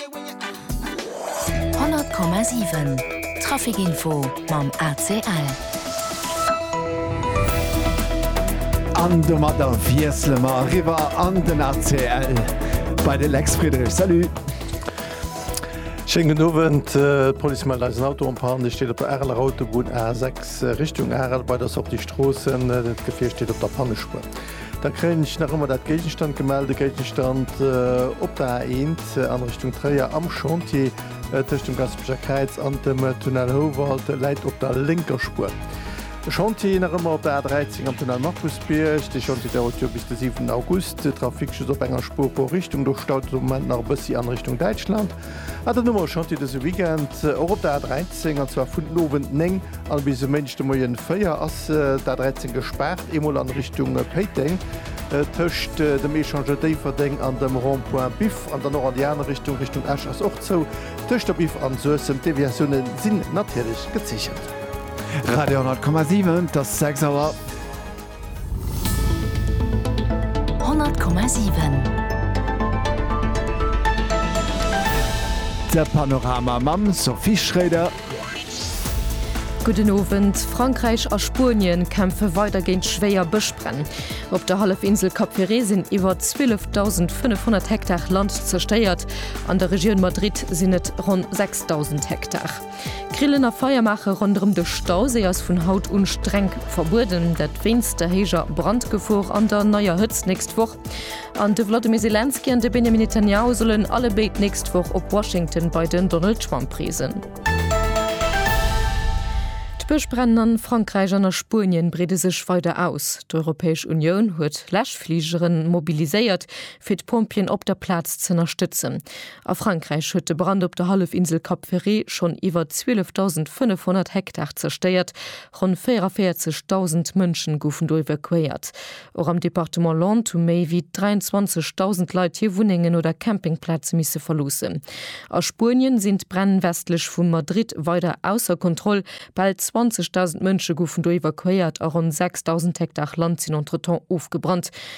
100,7 Trafic info mam ACL. An domadder wiessele mer eriwwer an den ACL bei de Lex Friedrich. Salut! Schéin gudden Owend. D'Police mellt eis en Auto en panne. Dee steet op der Areler Autobunn A6 Richtung Arel bei der Sortie Stroossen. Dat Gefier steet op der Pannespuer. Da kréien ech nach ëmmer dat Géigestand gemell, de Géigestand op der A1 an Richtung Tréier am Chantier tëscht dem Gaspeger Kräiz an dem Tunnel Houwald läit op der lénker Spuer. De Chantier nach ëmmer op der A13 am Tunnel Markusbierg. De Chantier dauert jo bis de 7 August. De Trafic just op enger Spuer pro Richtung, do staut et op de Moment nach e bëssi an Richtung Däitschland. Ah, dann hu mer e Chantier dëse Weekend och op der A 13, an zwar vun den Owend 9 an bis e Méindeg de Moien 4 ass d'A 13 gespaart, eemol an Richtung Péiteng tëscht dem Echangeur Déifferdeng an dem Rond-point Biff, an dann och an déi aner Richtung, Richtung Esch ass och zou tëscht der Biff an Suessem. D'Deviatioune sinn natierlech gezeechent. Radio 100,7, et ass 6 Auer. De Panorama mam Sophie Schroeder. Gudden Owend. Frankräich a Spuenien kämpfe weider géint schwéier Bëschbränn. Op der Hallefinsel Cap Ferret sinn iwwer 12.500 Hektar Land zerstéiert, an der Regioun Madrid sinn et ronn 6.000 Hektar. Grillen a Feier maache ronderëm de Stauséi ass vun haut un streng verbueden, dat wéinst der héijer Brandgefor an der neier Hëtzt nächst Woch. An de Wladimir Zelensky an de Benjamin Netanyahu sollen allebéid d'nächst Woch op Washington bei den Donald Trump reesen. D'Bëschbränn a Frankräich an a Spuenien breede sech weider aus. D'Europäesch Unioun huet Läschfligeren mobiliséiert, fir d'Pompjeeën op der Plaz z'ënnerstëtzen. A Frankräich huet de Brand op der Hallefinsel Cap Ferret schonn iwwer 12.500 Hektar zerstéiert, ronn 44.000 Mënschen goufen do evakuéiert. Och am Departement Landes hu méi wéi 23.000 Leit hir Wunnengen oder Campingplaze misse verloossen. A Spuenien sinn d'Bränn westlech vu Madrid weider ausser Kontroll, bal 20.000 Mënsche goufen do evakuéiert a ronn 6.000 Hektar Land sinn entretemps ofgebrannt.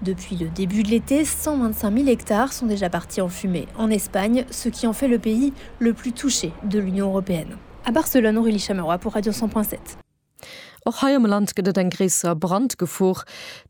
Depuis le début de l'été, 125 000 hectares sont déjà partis en fumée en Espagne, ce qui en fait le pays le plus touché de l'Union européenne. A Barcelone, Aurélie Chamerois pour Radio 100 point 7. Och hei am Land gëtt et eng gréisser Brandgefor.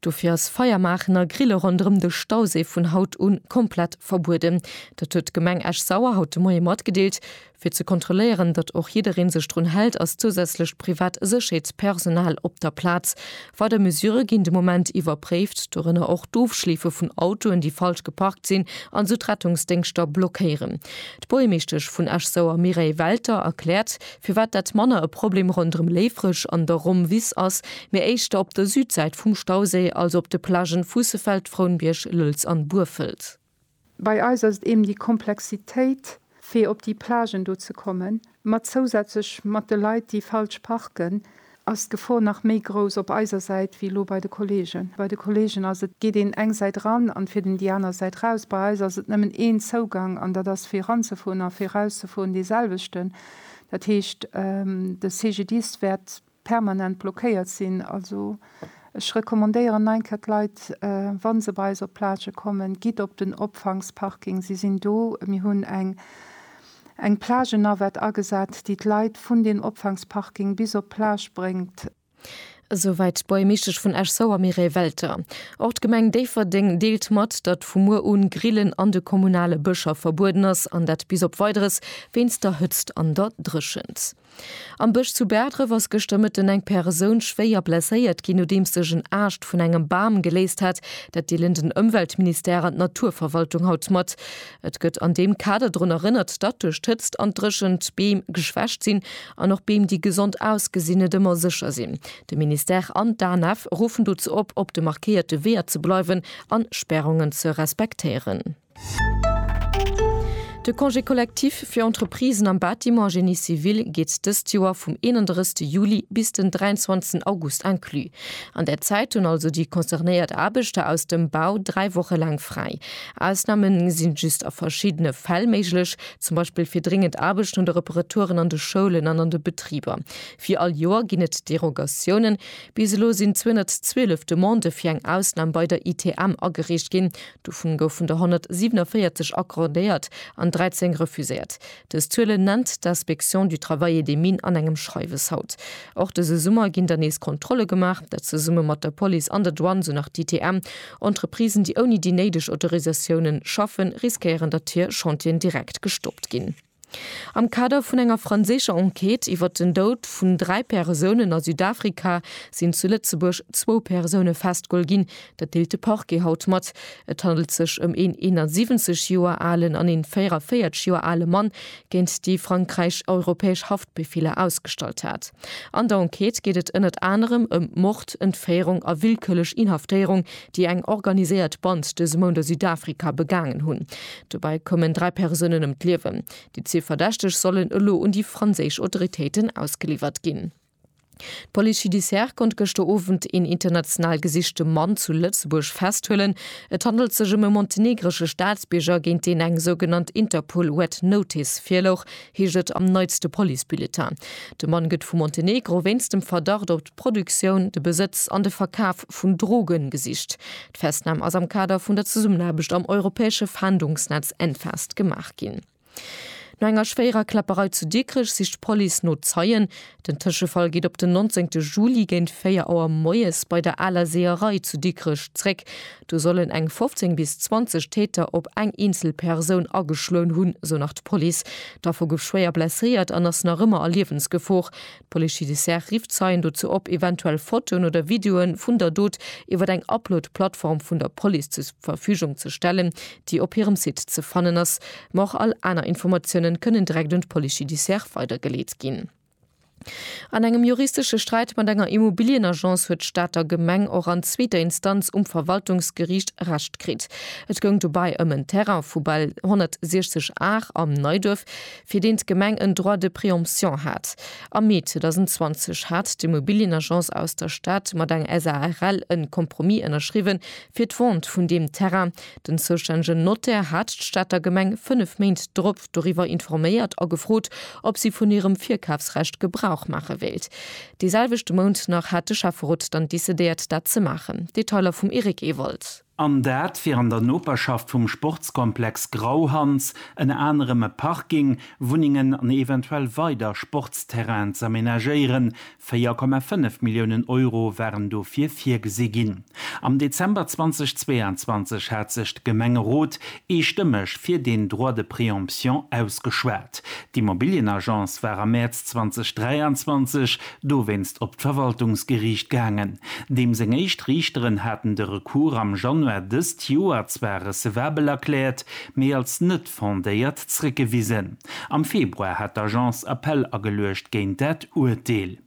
Dofir ass Feier maachen a Grille ronderëm de Stauséi vun haut un komplett verbueden. Dat huet d'Gemeng Esch-Sauer haut de Moie matgedeelt. Fir ze kontrolléieren, datt och jidderee sech drun hält, ass zousätzlecht privat Sécherheetspersonal op der Plaz. Weider Mesurë ginn de Moment iwwerpréift, dorënner och d'Ofschleefe vun Autoen, déi falsch geparkt sinn an esou d'Rettungsdéngschter blockéieren. D'Buergermeeschtesch vun Esch-Sauer Mireille Welter erkläert, firwat dat manner e Problem ronderëm Léifreg an der Rome-Wiss ass, mee éischter op der Südsäit vum Stauséi, also op de Plagen Fuussefeld, Frounbierg, Lëlz an Burfelt. Bei eis ass et eben déi Komplexitéit, fir op déi Plagen do ze kommen, mat zousätzlech mat de Leit, déi falsch parken, ass d'Gefor nach méi grouss op eiser Säit wéi elo bei de Kolleegen. Bei de Kolleegen ass et, geet een eng Säit ran an fiert een déi aner Säit raus. Bei eis ass et nëmmen een Zougang an dat ass fir eranzefueren a fir erauszefueren deeselwechten. Dat heescht, de CGDIS wäert. permanent blockéiert sinn. Also ech recommandéieren nach eng Kéier d'Leit, wa se bei eis op d'Plage kommen, gitt op den Opfangsparking, se sinn do. Mir hunn eng eng Plagennavette agesat, déi d'Leit vun deem Opfangsparking bis op d'Plage bréngt. Esouwäit d'Buergmeeschtesch vun Esch-Sauer Mireille Welter. Och d'Gemeng Déifferdeng deelt mat, datt vu muer un d'Grillen an de kommunale Bëscher verbueden ass, an dat bis op Weideres, wéinst der Hëtzt an der Dréchent. Am Bësch zu Bäerdref ass gëschter Mëtten eng Persoun schwéier blesséiert ginn, nodeems sech en Aascht vun engem Bam geléist hat. Dat deelen den Ëmweltministère an d'Naturverwaltung haut mat. Et gëtt an deem Kader drun erënnert, datt duerch d'Hëtzt an d'Dréchent d'Beem geschwächt sinn an och Beem, déi gesond ausgesinn, net ëmmer sécher sinn. De Ministère an d'ANF ruffen dozou op, op de markéierte Weeër ze bleiwen an Spärungen ze respektéieren. De Congé collectif fir Entreprisen am Bâtiment a Génie civil geet dëst Joer vum 31 Juli bis den 23 August inclus. An där Zäit hunn also déi concernéiert Aarbechter aus dem Bau dräi Woche laang fräi. Ausname sinn just a verschiddene Fäll méiglech, zum Beispill fir dringend Aarbechten oder Reparaturen an de Schoulen an an de Betriber. Wéi all Joer ginn et Derogatiounen. Bis elo sinn 212 Demandë fir eng Ausnam bei der ITM agereecht ginn, Dovun goufen der 147 accordéiert an 13 refuséiert. Dës Zuelen nennt d'Inspection du Travail et des Mines an engem Schreiwes haut. Och dëse Summer ginn der nees Kontrolle gemaach, dat zesumme mat der Police an der Douane, sou nach d'ITM. Entreprisen, déi ouni déi néideg Autorisatiounen schaffen, riskéieren, datt hir Chantieren direkt gestoppt ginn. Am Kader vun enger franséischer Enquête iwwert den Doud vun dräi Persounen a Südafrika sinn zu Lëtzebuerg zwou Persoune festgeholl ginn. Dat deelt de Parquet haut mat. Et handelt sech ëm een 71 Joer alen an een 44 Joer ale Mann, géint déi Frankräich europäesch Haftbefeeler ausgestallt hat. An der Enquête geet et ënnert anerem ëm Mord, Entféierung a willkürlech Inhaftéierung déi eng organiséiert Band dëse Mount a Südafrika begaangen hunn. Dobäi koumen dräi Persounen ëm d'Liewen. Déi zwee Verdächteg sollen elo un déi franséisch Autoritéiten ausgeliwwert ginn. D'Police judiciaire konnt gëschter Owend een international gesichte Mann zu Lëtzebuerg festhuelen. Et handelt sech ëm e montenegresche Staatsbierger, géint deen eng sougenannt Interpol Red Notice virlouch, heescht et am neitste Police-Bulletin. De Mann gëtt vu Montenegro wéinst dem Verdacht op d'Produktioun, de Besëtz an de Verkaf vun Droge gesicht. D'Festnam ass am Kader vun der Zesummenaarbecht am europäesche Fahndungsnetz Enfast gemaach ginn. No enger schwéierer Kläpperei zu Dikrech sicht d'Police no Zeien. Den Tëschefall geet op den 19 Juli géint 4 Auer moies bei der Aler Seeërei zu Dikrech zréck. Do sollen eng 15 bis 20 Täter op eng eenzel Persoun ageschloen hunn, esou nach d'Police. D'Affer gouf schwéier blesséiert an ass nach ëmmer a Liewensgefor. D'Police judiciaire rifft Zeien dozou op, eventuell Fotoen oder Videoe vun der Dot iwwer eng Upload-Plattform vun der Police zur Verfügung ze stellen. déi op hirem Site ze fannen ass, ma och all aner Informatiounen kënnen direkt un d'Police judiciaire weidergeleet ginn. An engem juristesche Sträit mat enger Immobilien-Agence huet d'Stater Gemeng och an zweeter Instanz um Verwaltungsgeriicht Recht kritt. Et goung dobäi ëm en Terrain vu bal 160 Ar am Neiduerf, fir deen d'Gemeng en Droit de préemption hat. Am Mee 2020 hat d'Immobilien-Agence aus der Stad mat eng SARL en Compromis ënnerschriwwen, fir d'Vente vun deem Terrain, Den zoustännegen Notaire hat d'Stater Gemeng fënnef Méint drop doriwwer informéiert a gefrot, ob si vun hirem Virkafsrecht Gebrauch maache wéilt. Dee selwechte Mount nach hat de Schäfferot dann decidéiert, dat ze maachen. Detailer vum Eric Ewald. An dat wier an der Noperschaft vum Sportskomplex Grauhans, ënner anerem e Parking, Wunnengen an eventuell weider Sportsterrainen z'amenagéieren, 4,5 Milliounen Euro waren dofir virgesi ginn. Am Dezember 2022 hat sech de Gemengerot eestëmmeg fir deen Droit de préemption ausgeschwat. D'Immobilienagence war am Mäerz 2023 dowéinst op d'Verwaltungsgeriicht gaangen. Deem seng éischt Riichteren haten de Recours am Januar dëst Joer zwar recevabel erkläert, mee als net fondéiert zrëckgewisen. Am Februar hat d'Agence Appell ageluecht géint dat Urteel.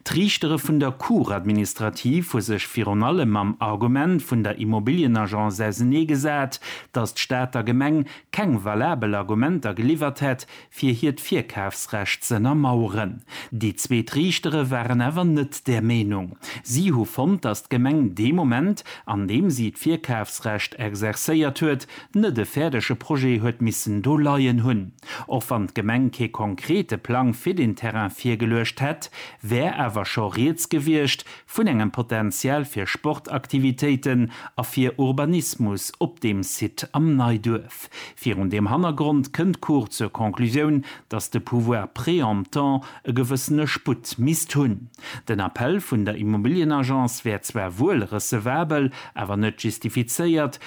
D'Riichtere vun der Cour administrative hu sech virun allem mam Argument vun der Immobilienagence ausenee gesat, datt d'Stad der Gemeng keng valabel Argumenter geliwwert hätt, fir hiert Virkafsrecht z'ënnermaueren. Déi zweet Riichtere waren awer net där Meenung. Si hu fonnt, datt d'Gemeng dee Moment, an deem si d'Virkafsrecht exerzéiert huet, Net e fäerdege Projet huet missen do leien hunn. Och wann d'Gemeng kee konkrete Plang fir den Terrain virgeluecht hätt, wär awer scho rieds gewiescht vun engem Potential fir Sportaktivitéiten a fir Urbanismus op deem Site am Neiduerf. Virun deem Hannergrond kënnt d'Cour zur Conclusioun, datt de Pouvoir préemptant e gewëssene Sputt misst hunn. Den Appell vun der Immobilienagence wär zwar wuel recevabel, awer net justifizéiert,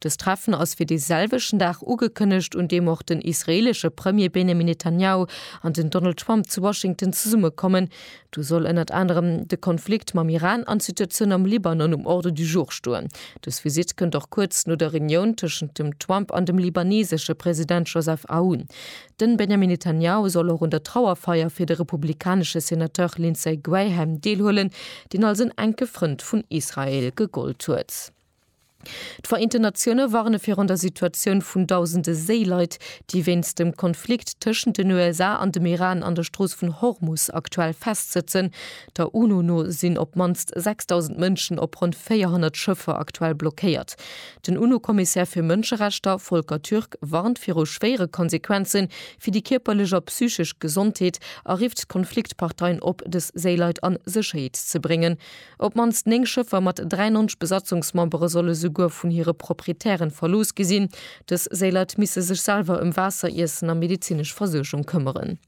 Dëst Treffen ass fir dee selwechten Dag ugekënnegt, un deem och den israeelesche Premier Benjamin Netanyahu an den Donald Trump zu Washington zesumme kommen. Do soll ënnert anerem de Konflikt mam Iran an d'Situatioun am Libanon um Ordre du jour stoen. Dës Visitt kënnt och kuerz no der Reunioun tëschent dem Trump an dem libanesesche President Joseph Aoun. De Benjamin Netanyahu soll och un der Trauerfeier fir de republikanesche Senateur Lindsey Graham deelhuelen, deen als en enke Frënd vun Israel gegollt huet. D'Vereenten Natioune warne virun der Situatioun vun dausende Séileit, déi wéinst dem Konflikt tëschent den USA an dem Iran an der Strooss vun Hormus aktuell festsëtzen. Der UNO no sinn op d'mannst 6.000 Mënschen op ronn 400 Schëffer aktuell blockéiert. Den UNO-Kommissär fir Mënscherechter, Volker Türk, warnt viru schwéiere Konsequenze fir déi kierperlech a psychesch Gesondheet a rifft d'Konfliktparteien op, dës Séileit a Sécherheet ze bréngen. Op d'mannst 9 Schëffer mat 93 Besatzungsmembere solle souguer vun hire Proprietären verlooss gi sinn. Dës Séilert misse sech selwer ëm Waasser, Iessen a medezinesch Versuergung këmmeren.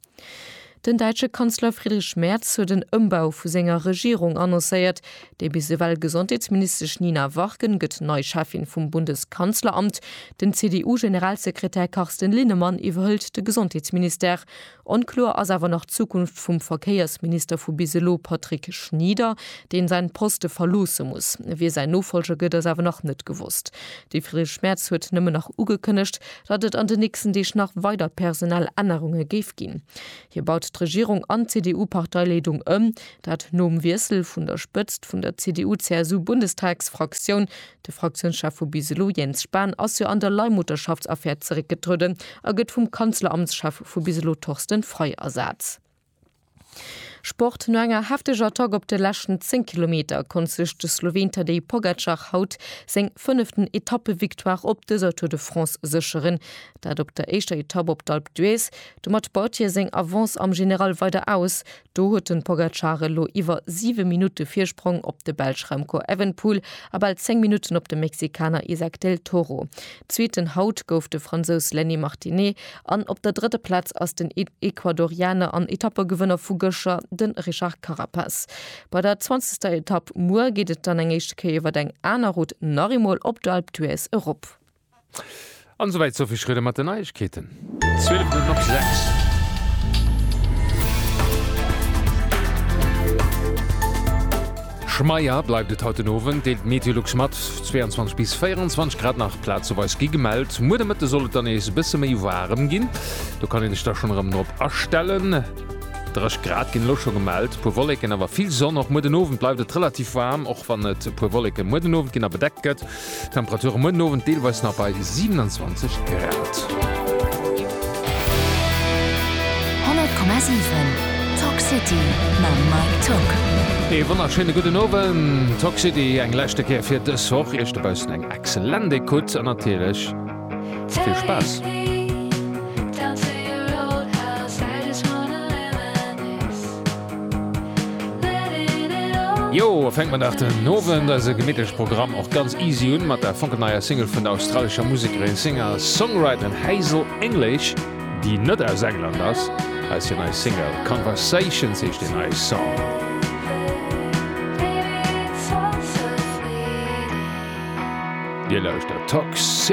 Den däitsche Kanzler Friedrich Merz huet en Ëmbau vu senger Regierung annoncéiert. Déi bis ewell Gesondheetsministesch Nina Warken gëtt nei Cheffin vum Bundeskanzleramt. Den CDU-Generalsekretär Carsten Linnemann iwwerhëlt de Gesondheetsministère. Onkloer ass awer nach d'Zukunft vum Verkéiersminister vu bis elo, Patrick Schnieder, deen säin Poste verloosse muss. Wie säin Nofolger gëtt ass awer nach net gewosst. De Friedrich Merz huet nëmmen nach ugekënnegt, datt et an de nächsten Deeg nach weider personell Ännerunge géif ginn. Hie baut d'Regierung an d'CDU-Parteileedung ëm, dat nom Wiessel vun der Spëtzt vun der CDU-CSU-Bundestagsfraktioun. De Fraktiounschef vu bis elo, Jens Spahn, ass jo an der Leihmutterschaftsaffär zeréckgetrueden a gëtt vum Kanzleramtschef vu bis elo, Torsten Frei, ersat. Sport, No enger hefteger Attack op de leschten 10 Kilometer konnt sech de Sloween Tadej Pogacar haut seng fënneften Etappevictoire op dëser Tour de France sécheren. Dat op der éischter Etapp op d'Alpe d'Huez. Domat baut hie seng Avance am General weider aus. Do huet de Pogacar elo iwwer 7 Minutte Virsprong op de Belsch Remco Evenepoel a bal 10 Minutten op de Mexikaner Isaac del Toro. Zweeten haut gouf de Fransous Lenny Martinet an op der drëtter Plaz ass den Ecuadorianer an Etappegewënner vu gëscher, de Richard Carapaz. Bei der zwanzegster Etapp muer geet et dann eng éischte Kéier iwwer eng aner Route nach eemol op d'Alpe d'Huez erop. An esouwäit d'Sophie Schröder mat den Neiegkeeten. 12 Minutten op 6. Schmeier bleift et haut den Owend, deelt d'Meteolux mat. 22 bis 24 Grad nach plazeweis gi gemellt. Muer de Mëtte soll et dann nees e bësse méi waarem ginn. Do kann ee sech da schonn erëm drop astellen. 30 Grad ginn elo scho gemellt, e puer Wolleken, awer vill Sonn. Och muer den Owend bleift et relativ waarm, och wann et e puer Wolleken muer den Owend ginn a bedeckt gëtt. D'Temperature muer den Owend deelweis nach bei 27 Grad. 100,7 Talk City mam Mike Tock. Ee wonnerschéine gudden Owend, Talk City eng leschte Kéier fir dës Woch. Iech dobaussen eng excellent Ecoute an natierlech vill Spaass. Jo, fänkt man nach den Owend eise gemittlech Programm och ganz easy un mat der fonkelneier Single vun der australescher Musekerin, Singer-Songwriterin Hazel English, déi net aus England ass. Hei ass hir nei Single, Conversations heescht deen neie Song. Dir lauschtert Toxic!